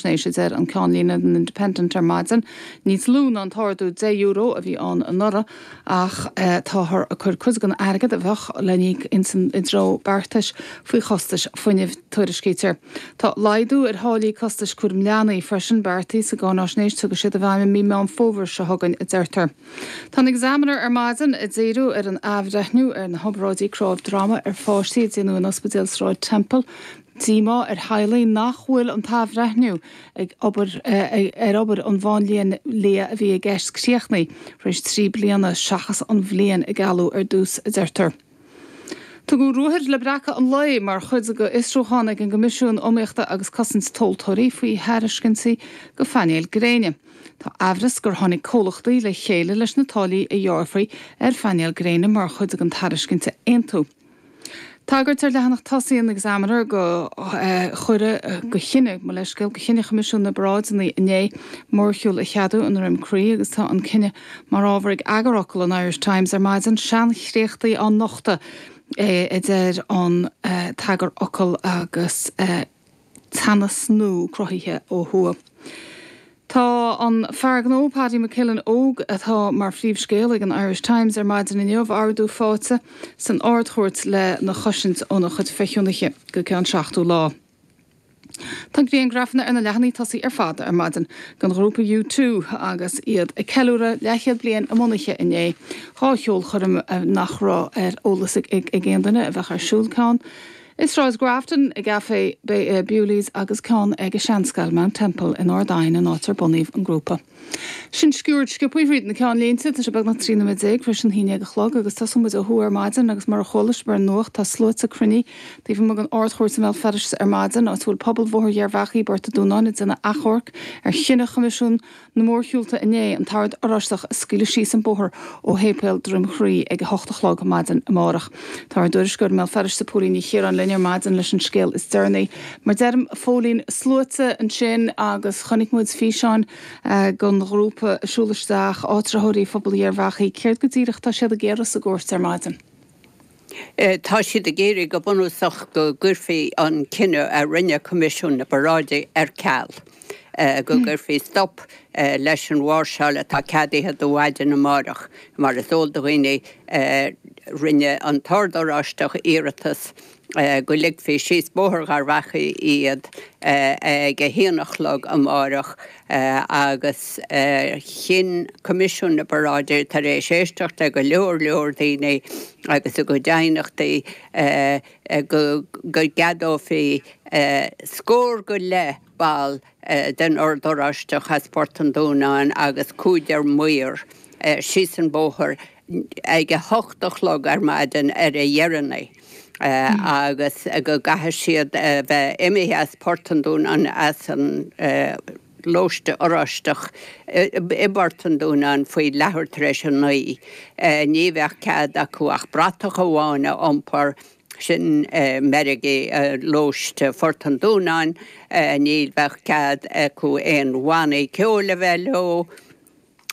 Sin é a deir an ceannlíne den Independent ar maidin, níos lú ná an t-ardú €10 a bhí ann anuraidh ach táthar ag cur cuid don airgead a bheadh le n-íoc i dtreo beartais faoi chostais fuinnimh, tuairiscítear. Tá laghdú ar tháillí costais cúraim leanaí freisin beartaithe sa gcáinaisnéis ach ní thiocfaidh siad i bhfeidhm i mí Meán Fómhair seo chugainn, a deirtear. Tá an Examiner ar maidin ag díriú ar an athbhreithniú ar na hoibráidí cnámh droma ar pháistí a déanadh in Ospidéal Sráid Temple, díomá ar theaghlaigh nach bhfuil an t-athbhreithniú ar ar obair an mháinlia a bhí i gceist críochnaithe tar éis trí bliana seachas an bhliain a gealladh ar dtús, a deirtear. Tugadh ruathair le breacadh an lae mar chuid d'fhiosrúchán ag an gCoimisiún Iomaíochta agus Cosaint Tomhaltóirí faoi thairiscintí do phainéil gréine. Tá aimhreas gur tháinig comhlachtaí le chéile leis na táillí a ghearrfaí ar phainéil gréine mar chuid den tairiscint a aontú. Tagairt ar leathanach tosaigh an Examiner do chinneadh do chinneadh, mo leithscéal, do chinneadh Choimisiún na bParáideanna inné mórshiúl a cheadú i nDroim Crí agus tá an cinneadh mar ábhar ag eagarfhocal an Irish Times ar maidin, seanchréachtaí á nochtadh a deir an t-eagarfhocal agus. teannas nua cruthaithe ó thuaidh. Tá an fear gnó Paddy McKillen Óg, atá mar phríomhscéal ag an Irish Times ar maidin inniu, ordú faighte san Ardchúirt lena chosaint óna chuid feichiúnaithe go ceann seachtó lá. Tá griangrafanna ar na leathanaigh tosaigh ar fad ar maidin den ghrúpa U2 agus iad ag ceiliúradh leathchéad bliain a mbunaithe inné, dhá cheolchoirm nach raibh ar eolas ag aon duine a bheadh ar siúl ceann I Sráid Grafton i gCafé Bewley's agus ceann ag seanscoil Mount Temple in Ard Aidhin an áit ar bunaíodh an grúpa. Sin sciuird sciobtha thríd na ceannlínte. Tá sé beagnach trí nóiméad déag tar éis an haon déag a chlog agus tosóidh muid ó thuaidh ar maidin agus mar a chuala sibh ar an nuacht tá sluaite ag cruinniú taobh amuigh den Ardchúirt i mBéal Feirste ar maidin, áit a bhfuil pobal Bhóthar Gharbhachaidh i bPort a Dúnáin ag déanamh achomharc ar chinneadh Choimisiún Na mórshiúlta inné, an tOrd Oráisteach a scaoileadh síos an bóthar ó Shéipéal Dhroim Crí ag a hocht a chlog maidin amárach. Tá ár dtuairisceoir i mBéal Feirste, Póilín Ní Chiaráin linn ar maidin leis an scéal is deireanaí. Mar deirim, Phóilín sluaite ansin agus chonaic muid físeáin den ghrúpa ag siúl isteach, áitritheoirí phobal Gharbhachaidh. Céard go díreach atá siad ag iarraidh sa gcúirt ar maidin? Tá siad ag iarraidh, go bunúsach, go gcuirfí an cinneadh a rinne Coimisiún na bParáidí ar ceal, go gcuirfí stop leis an mháirseáil atá ceadaithe do mhaidin amárach. Mar is eol do dhaoine, rinne an tOrd Oráisteach iarratas, go ligfí síos Bóthar Gharbhachaidh iad ag a haon a chlog amárach agus chinn Coimisiún na bParáidí, tar éis éisteacht le go leor leor daoine agus a gcuid aighneachtaí, go gceadófaí scór go leith. ball den Ord Oráisteach as Port an Dúnáin agus cúigear maor síos an bóthar ag a hocht a chlog ar maidin ar a dheireanaí agus go gcaithfidh siad a bheith imithe as Port an Dúnáin as an Lóiste Oráisteach i bPort an Dúnáin faoi leathuair tar éis a naoi. Ní bheadh cead acu ach bratach amháin a iompar. sin meirgí lóiste Phort an Dúnáin, ní bheadh cead acu aon bhannaí ceoil a bheith leo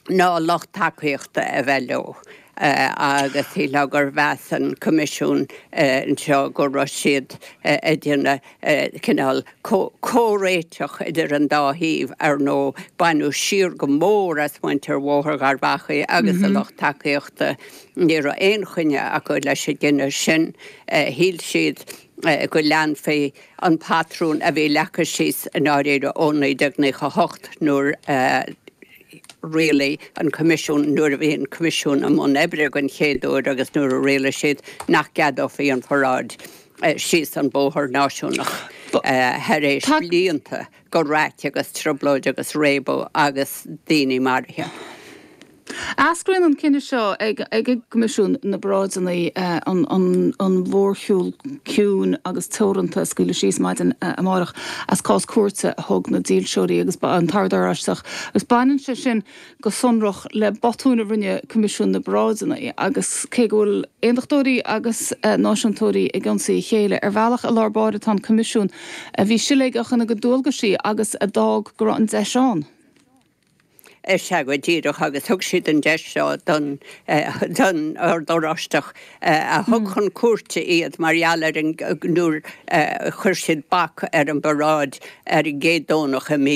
ná lucht tacaíochta a bheith leo agus shílfeá gur mheas an Coimisiún anseo go raibh siad ag déanamh cineál comhréitigh idir an dá thaobh, ar ndóigh. Baineadh siar go mór as muintir Bhóthar Gharbh Achaidh agus a lucht tacaíochta. Ní raibh aon choinne acu leis an gcinneadh sin. Shíl siad go leanfaí an patrún a bhí leagtha síos i ndáiríre ó 1998 nuair a rialaigh an Coimisiún, nuair a bhí an Coimisiún i mbun oibre den chéad uair agus nuair a rialaigh siad nach gceadófaí an pharáid. síos an bóthar náisiúnach tar éis blianta de raic agus trioblóid agus réabadh agus daoine maraithe. Eascraíonn an cinneadh seo ag ag an gCoimisiún na bParáideanna an an an mhórshiúl ciúin agus teoranta a scaoileadh síos maidin amárach as cás cúirte a thug na dílseoirí agus an tOrd Oráisteach agus baineann sé sin go sonrach le botún a rinne Coimisiún na bParáideanna agus cé go bhfuil aondachtóirí agus náisiúntóirí ag ionsaí a chéile, ar bhealach i lár báire tá an Coimisiún, a bhí siléigeach ina gcuid dualgaisí agus a d'fhág go raibh an deis ann. Is ea go díreach agus thug siad an deis seo don don Ord Oráisteach a thug chun cúirte iad mar gheall ar an nuair a chuir siad bac ar an bparáid ar an gcéad Domhnach i mí